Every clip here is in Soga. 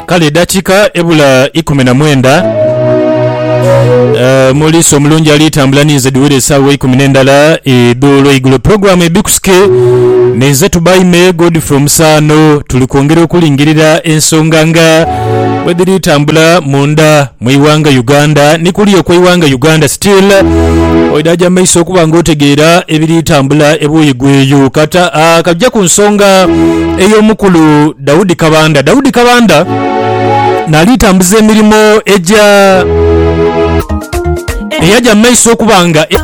Kale edakika ebula ikumi na mwenda eh, Omulisa omulungi ali tambula ninze dhiwire esaawa eikumi nendala edh'olweigulo. Pulogulamu Ebikusike ninze Tubaime Godfrey Omusaano tuli kwongera okulingirira ensonga nga bwedhiri tambula munda. Mu ighanga Uganda ni kuli okwe ighanga Uganda still oidaaja maiso okuba nga otegeera ebiri tambula ebuuyi gweeyo. Kata aah kaja ku nsonga eyo mukulu Daudi Kabanda. Daudi Kabanda naali tambuza emirimo egya eyaja mu maiso okuba nga e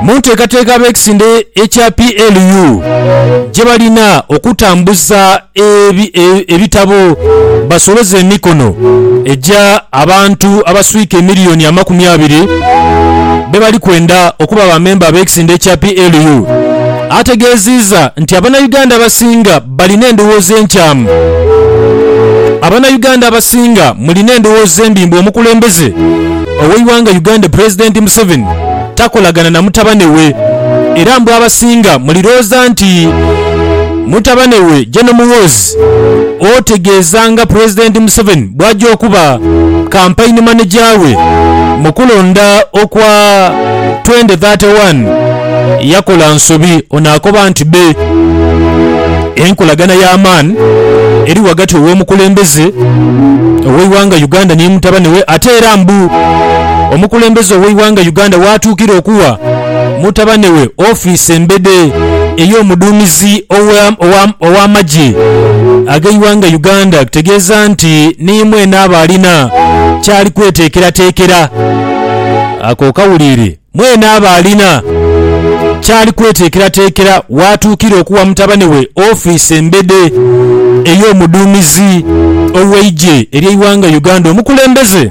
munteekateeka abekisinde ekya PLU gyebalina okutambuza ebitabo basoloze emikono egya abantu abaswika emiliyoni amakumi abiri be bali kwenda okuba ba memba ab'ekisinde ekya PLU ategeeziiza nti Abanayuganda abasinga balina endowooza enkyamu Abanayuganda abasinga mulina endowooza embi mbu omukulembeze ow'eighanga Uganda Pulezidenti Museveni takolagana na mutabane we era mbu abasinga mulirooza nti mutabane we Gen Muhoozi otegeeza nga Pulezidenti Museveni bwajja okuba Kampaini Maneja we mu kulonda okwa twende thate wani yakola nsobi ono akoba nti be enkolagana y'amaani eri ghagati ow'omukulembeze ow'eighanga Uganda ni mutabane we ate era mbu omukulembeze ow'eighanga Uganda waatuukira okuwa mutabane we ofiisi embede ey'omuduumizi ow'amagye ag'eighanga Uganda kitegeeza nti ni mwene aba alina kyali kweteekerateekera. Ako okawuliire, mwene aba alina kyali kweteekerateekera waatuukira okuwa mutabane we ofiisi embede ey'omuduumizi ow'eigye ery'eighanga Uganda omukulembeze.